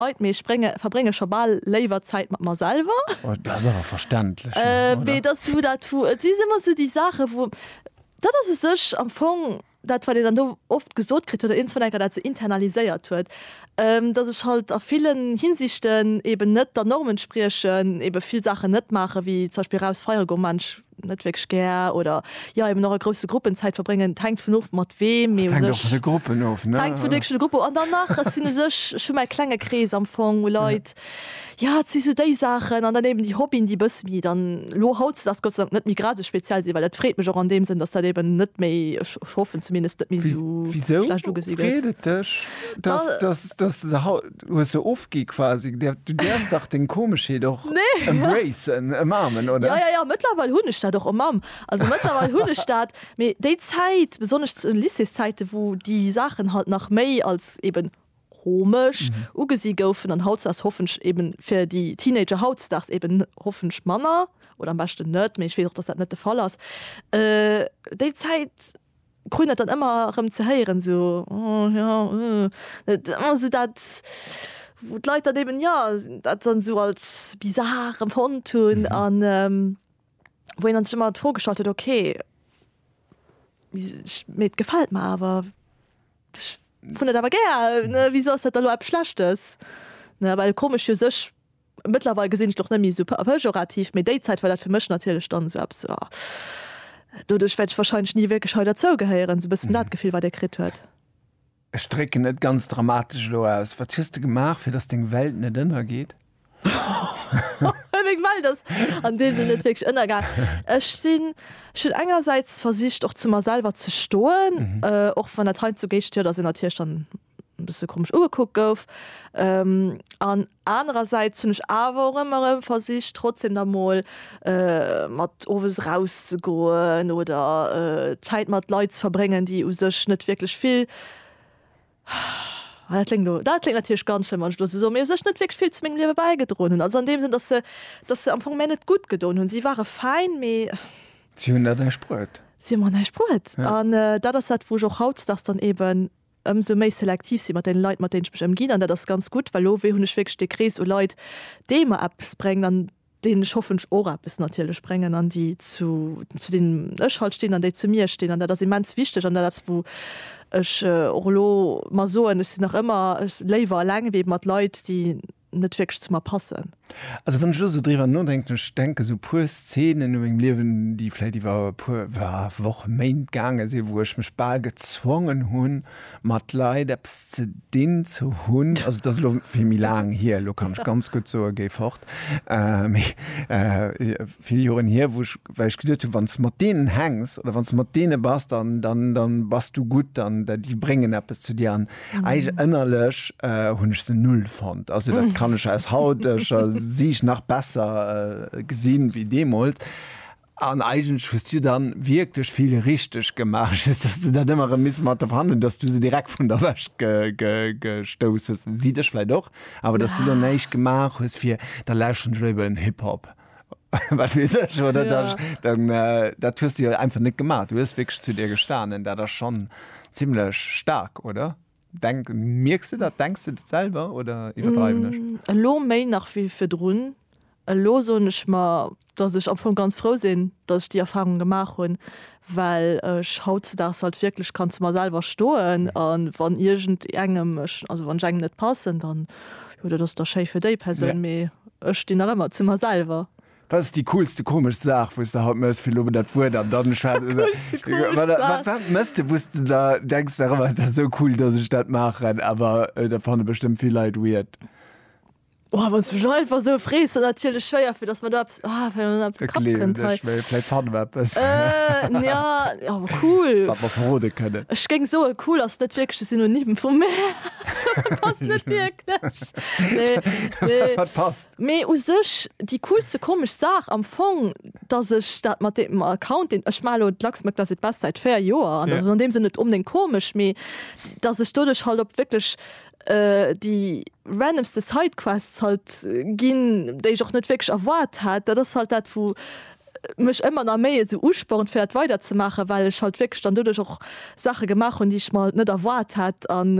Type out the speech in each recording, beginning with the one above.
Ait, mee ech verbrénge scho bal léiwer Zäit mat mer selwer. Oh, dat ass awer verständlech, oder? Mee et ass esou dat, wou, et si ëmmer esou déi Saachen, wou, dat ass u sech am Fong dat, wat een dann do oft gesot kritt oder iergendwann enker dat esou internaliséiert huet, dass ech halt a villen Hinsichten eeben net der Norm entspriechen, eebe vill Saachen net maachen, wéi zum Beispill eraus feiere goen, man, ech net wierklech gär oder jo eben och a grousse Gruppen Zäit verbréngen. Et hänkt vun of mat weem, mee u Hänkt och sech vun de Gruppen of, ne? hänkt vun de verschiddene Gruppen of. An dann nach, et sinn u sech, ech hu mäi klenge Krees am Fong u Leit, jo et si sou déi Saachen an dann eben déi Hobbyen, déi e bësse méi dann elo hautzedaags Gott sei Dank net méi gradesou speziell sinn, well dat freet mech och an deem Sënn, datt dat eben net méi, ech hoffen zumindest, net méi esou schlecht ugesinn gëtt. Wéi, wisou freet et dech, datt, datt, datt se hau. Du hues se ofgi quasi. Du däers dach deng Komeschheet och embracen, ëmarmen, oder? Jo, jo, jo, mëttlerweil hunn ech dat och ëmamm. Also mëttlerweil hunn ech dat. Mee déi Zäit, besonnesch zu den Lycéeszäiten, wou déi Saachen halt nach méi als eben komesch ugesi goufen, an hautdesdaags hoffench eben fir déi Teenager hautdesdaags eben hoffench manner, oder am beschten net, mee ech weess och, dass dat net de Fall ass, déi Zäit, Krun dat dann ëmmer erëm ze héieren, esou, oh jo, uh. Et ëmmer esou dat, wou d'Leit dann eben, jo, dat dann esou als bizar empfonnt hunn an wou een dann sech ëmmer d'Fro gestallt huet, ok, mee et gefält mer awer, ech hunn et awer gär, ne, wisou ass dat da elo eppes Schlechtes, ne, well komesch u sech. Mëttlerweil gesinn ech et och net méi esou pejorativ, mee déi Zäit war dat fir mech natierlech dann esou eppes, oh. Doduerch wäert ech wahrscheinlech ni wierklech hei derzou gehéieren, esou e bëssen dat Gefill, wat ee kritt huet. Ech drécken et ganz dramatesch elo aus, Wat hues de gemaach, fir datt deng Welt net ënnergeet? Meng Welt ass an deem Sënn net wierklech ënnergaang. Ech sinn, ech hunn engersäits versicht, och zu mer selwer ze stoen, och wann dat heiandsdo géigsteet, ass een natierlech dann e bësse komesch ugekuckt gouf. An anerersäits hunn ech awer och ëmmer erëm versicht, trotzdem da mol mat owes erauszegoen oder Zäit mat Leit ze verbréngen, déi u sech net wierklech vill, dat kléngt elo, dat kléngt natierlech ganz schlëmm, wann ech elo esou soen, mee u sech net wierklech vill zu mengem Liewe bäigedroen hunn. Also an deem Sënn, datt se, datt se am Fong mär net gutt gedoen hunn. Si ware fäin, mee. Si hunn der näischt bruet. Si hu mer näischt bruet. An dat ass dat, wou ech och hautdesdaags dann eeben ëmsou méi selektiv sinn mat den Leit mat denen ech mech ëmginn an dat ass ganz gutt, well lo hunn ech wierklech dee Krees u Leit dee mer eppes bréngt an denen ech hoffentlech och eppes natierlech bréngen an déi zu zu denen ech halt stinn an déi zu mir stinn an dat ass immens wichteg an dat eppes wou ech och elo mer soen, ech sinn nach ëmmer léiwer eleng wéi mat Leit déi net wierklech zu mer passen. Also wann ech elo sou driwwer nodenken, ech denke sou puer Szenen u mengem Liewen, déi vläit iwwer e puer Wochen, Méint gaange sinn, wou ech mech bal gezwongen hunn, mat Leit eppes ze dinn ze hunn. Also dat ass elo vill méi laang hier, elo kann ech ganz gutt soen, géi fort. Mee vill Joren hier, wou ech, well ech geduet hunn, wann s de mat deenen hänks oder wann s de mat deene bass, dann bass du gutt, dann déi bréngen eppes zu dir. Eig ënnerlech hunn ech se null fonnt. Also dat kann ech aus hauteger Siicht nach besser äh, gesinn wéi deemools. An eigentlech hues du dann wierklech vill richteg gemaach, just dass du dat ëmmer erëm miss mat der verhandelen, dass du se direkt vun der Wäsch ge ge gestouss hues. Si dech vläit och, awer dass du dann näischt gemaach hues fir, da lauschteren ech léiwer en Hip-Hop. wat wees ech oder ja. das, dann äh, dat hues du ja einfach net gemacht du hues wirklich zu dir gestanen dat das schon ziemlich stark oder denk merkst du dat denkst du dat selber oder iwwerdreiwen ech mm, elo méi nach wie fir drun elo so nech mal dass ich am vu ganz froh sinn dass ich die erfahrung gemacht hun well ech hautzedaags halt wierklech kann zu mer selwer stoen a wann iergend engem ech, also wann ech engem net passen, dann, jo, dat ass da schéi fir déi Persoun, mee ech stinn nach ëmmer zu mer selwer. Wat ass déi coolste komesch Saach, wou s de haut mëss? Fir elo mol dat Wuert an dann schwätzen se, wat, wat mëss de, wou s de da denks nach ëmmer, dat ass esou cool, dass ech dat maachen, awer dat fanne bestëmmt vill Leit weird? Oh, wann du einfach so frees natierlech schwéier fir dass man da ja, ja cool verrode kënne Ech géng so cool ass net wierklech de Synonym vu Mär Mee u sech déi coolste komesch Saach am Fong, datt ech dat mat deem Account deen ech mar elo d'Lachs Magda seet best säit 4 Joer an deem sinn net onbdéngt komesch, mee datt ech doduerch halt op wierklech déi randomste Sidequests halt ginn, déi ech och net wierklech erwaart hat. Dat ass halt dat wou mech ëmmer nach méi esou uspornt fir dat weider ze maachen, well ech halt wierklech dann doduerch och Saache gemaach hunn, déi ech mer halt net erwaart hat an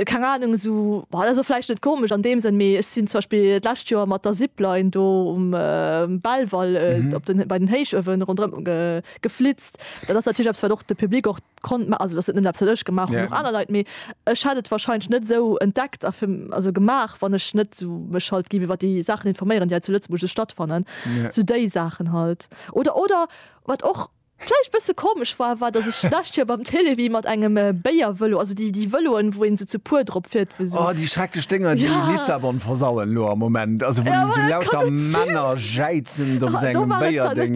keng Ahnung esou, dat ass och vläicht net komesch an deem Sënn, mee ech sinn zum Beispill d'lescht Joer mat der Zipline do um Belval op den, bei den Héichuewen ronderëm geflitzt. Dat ass natierlech eppes wat och de Public och konnt ma also dass et net eppes wat ech gemaach hunn, och aner Leit, mee ech hätt et wahrscheinlech net esou entdeckt a fir also gemaach, wann ech net esou mech halt géif iwwer déi Saachen informéieren, déi hei zu Lëtzebuerg sou stattfannen, sou déi Saachen halt. Oder, oder wat och vläicht bësse komesch war, war dass ech d'lescht Joer beim Télévie mat engem Béiervëlo, also déi déi Vëloen, wou een esou zu puer drop fiert, wou esou. Oh, déi schrecklech Dénger, déi Lissabon versauen elo am Moment, also wou esou lauter Männer jäizend op esou engem Béierdéng,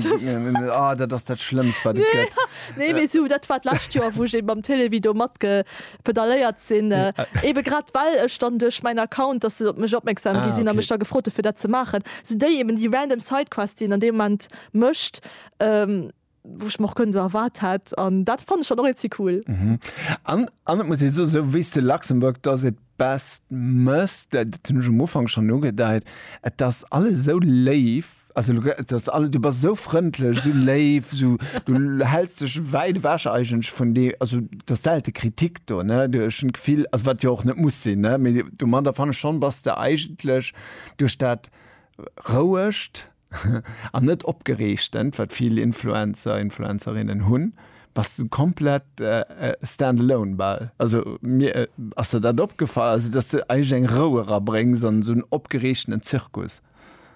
oh, dat ass dat Schlëmmst, wat et gëtt. Nee mee sou dat war d'lescht Joer wou ech eben mam Télévie do mat ge pedaléiert sinn, eben grad well ech dann duerch mäin Account, dass se op mech opmerksam gi sinn a mech da gefrot hu fir dat ze maachen, sou déi eben déi random Sidequest déi een an deem Moment mécht, wou ech mer och kënnen esou erwaart hätt an dat fannen ech dann och eenzéi cool. An et muss ee soen, sou wéi s de Luxembourg does it. best mësst, dat hunn ech um Ufank schonn ugedeit, et ass alles esou léif, also elo grad, et ass alles, du bass esou frëndlech, esou léif, esou, du häls dech wäit ewech eigentlech vun de, also et ass selte Kritik do, ne, du, ech hunn d'Gefill, also wat jo och net muss sinn, ne, mee domadder fannen ech schonn, bass de eigentlech duerch dat Rouegt, an net opgereegtent wat vill Influencer, Influencerinnen hunn, bass de komplett stand-alone bal. Also mir ass der dat opgefall, also dass de eigentlech eng Rou era bréngs an esou en opgereegtenen Zirkus.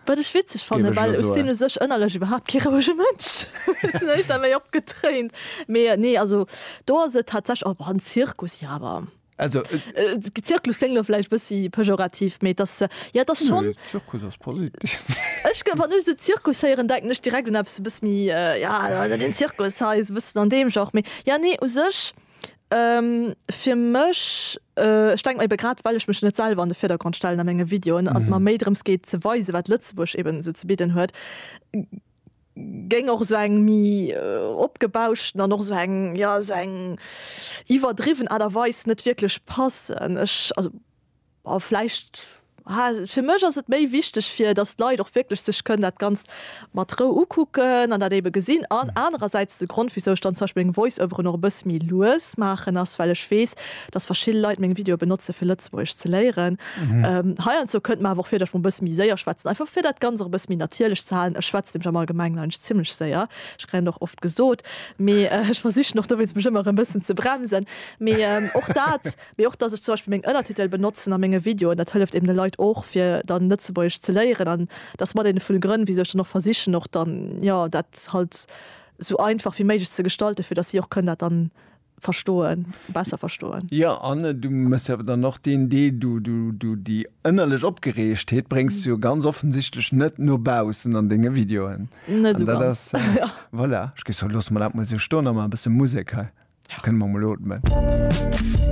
Wat ech witzeg fannen, well ech sinn u sech ënnerlech iwwerhaapt kee rouege Mënsch, sinn éischter méi opgetréint, mee nee, also do ass et tatsächlech, oh, en Zirkus, jo, awer. Also, äh, Zirkus klingt lo vielleicht bisschen pejorativ, mais das, äh, ja, das schon. Nee, Zirkus ist positiv. ich gehe, wenn ich so Zirkus hören, denke ich direkt an etwas ein bisschen mehr, äh, ja, also den Zirkus heißt ein bisschen an dem Genre. Mais, ja, nee, u sich, ähm, für mich, äh, ich denke eben gerade, weil ich mich nicht selber an den Vordergrund stellen an meinen Videos mhm. und mir mehr darum geht, zu weisen, was Lützeburg eben so zu bieten hat, géing och esou eng méi opgebauschten an och esou eng, jo, esou eng iwwerdriwwen Aart a Weis net wierklech passen. Ech, also, bon, vläicht, ha, fir mech ass et méi wichteg, fir datt d'Leit och wierklech sech kënnen dat Ganzt mat Rou ukucken an dat ebe gesinn. An anerersäits, de Grond, wéisou ech dann zum Beispill meng Voice-Overen och e bësse méi lues maachen, ass, well ech weess, dass verschill Leit meng Videoe benotze fir Lëtzebuergesch ze léieren. Heiandsdo kënnt mer awer och vir, datt ech mol e bësse méi séier schwätzen, einfach fir dat Ganzt och e bësse méi natierlech ze halen. Ech schwätzt nämlech am Allgemengen eigentlech zimmlech séier, ech kréien dat och oft gesot, mee ech versichen och dowéinst mech ëmmer e bëssen ze bremsen. Mee och dat, mee och, dass ech zum Beispill meng Ënnertitel benotzen a menge Videoen, dat hëlleft eben de Leit och fir dann Lëtzebuergesch ze léieren. An dat ass mat ee vun de Grënn, wisou ech dann och versichen och dann, jo, dat halt esou einfach wéi méiglech ze gestalten, fir dass si och kënnen dat dann verstoen, besser verstoen. Jo, an du méchs jo awer dann och deen Deel, du, du, du, déi ënnerlech Opgereegtheet bréngs du jo ganz offensichtlech net no baussen an denge Videoen. Net esou ganz, jo. Voilà, ech géif soen, loosse mer dat mol esou stoen a maache e bësse Musek hei. Da kënne mer mol ootmen.